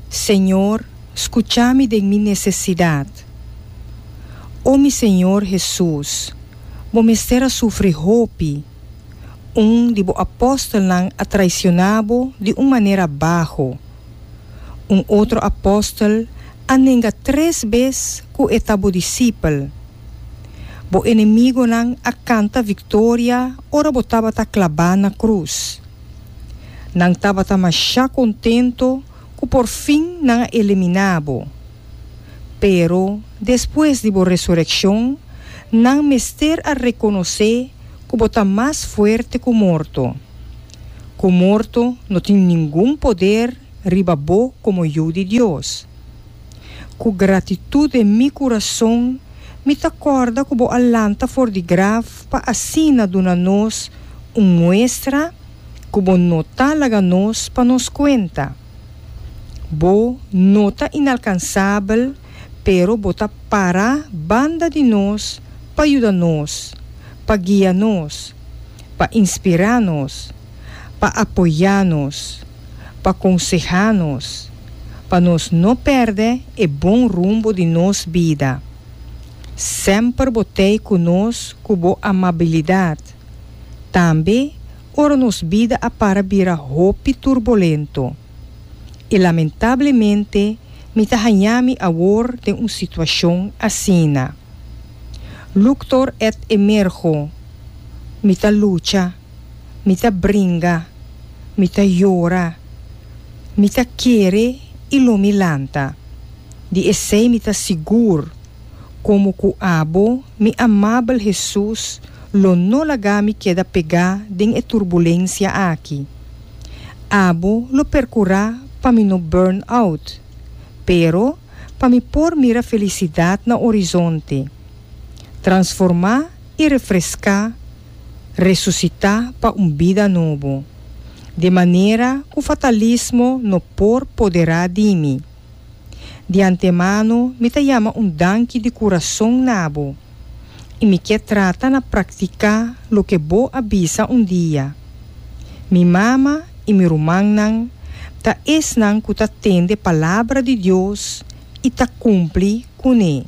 Señor, scucha mi den mi necesidad. O mi Señor Hesus, Bo mester a sufri hopi. Un di Bo apóstolnan a traiciona Bo di un manera baho. Un otro apóstol a nenga tres bes cu e ta Bo discipel. Bo enemigonan a canta victoria ora Bo tabata clabá na cruz. Nan tabata mashá kontento ku por fin nan a eliminá bo. Pero despues di bo resurekshon, nan mester a rekonosé ku bo ta mas fuerte ku morto, ku morto no tin ningun poder riba bo komo Yu di Dios. Ku gratitut en mi kurason, mi ta kòrda ku bo a lanta for di graf pa asina duna nos un muestra ku bo no ta laga nos pa nos kuenta. Bo no ta inalkansabel, pero bo ta pará banda di nos pa yuda nos, pa guia nos, pa inspirá nos. pa apoyá nos, pa konsehá nos pa nos no pèrdè e bon rumbo di nos bida. Semper bo tei ku nos ku bo amabilidat, tambe ora nos bida a para bira hopi turbolento. I lamentablemente mi ta hañá mi awor den un situashon asina. Luctor et Emergo, Mi ta lucha. mi ta bringa, mi ta yora, mi ta kere i lo mi lanta. Di esei mi ta sigur, komo ku abo, mi amabel Hesus lo no laga mi keda pegá den e turbulensia aki. Abo lo perkurá pa mi no burn out, pero pa mi por mira felisidat na orizonte, transformá i refreská. resusitá pa un bida nobo. De manera ku fatalismo no por poderá di mi. Di antemano mi ta yama un danki di kurason na bo, i mi ke trata na praktiká loke bo a bisa un dia. Mi mama i mi rumannan ta esnan ku ta tende Palabra di Dios i ta kumpli kuné.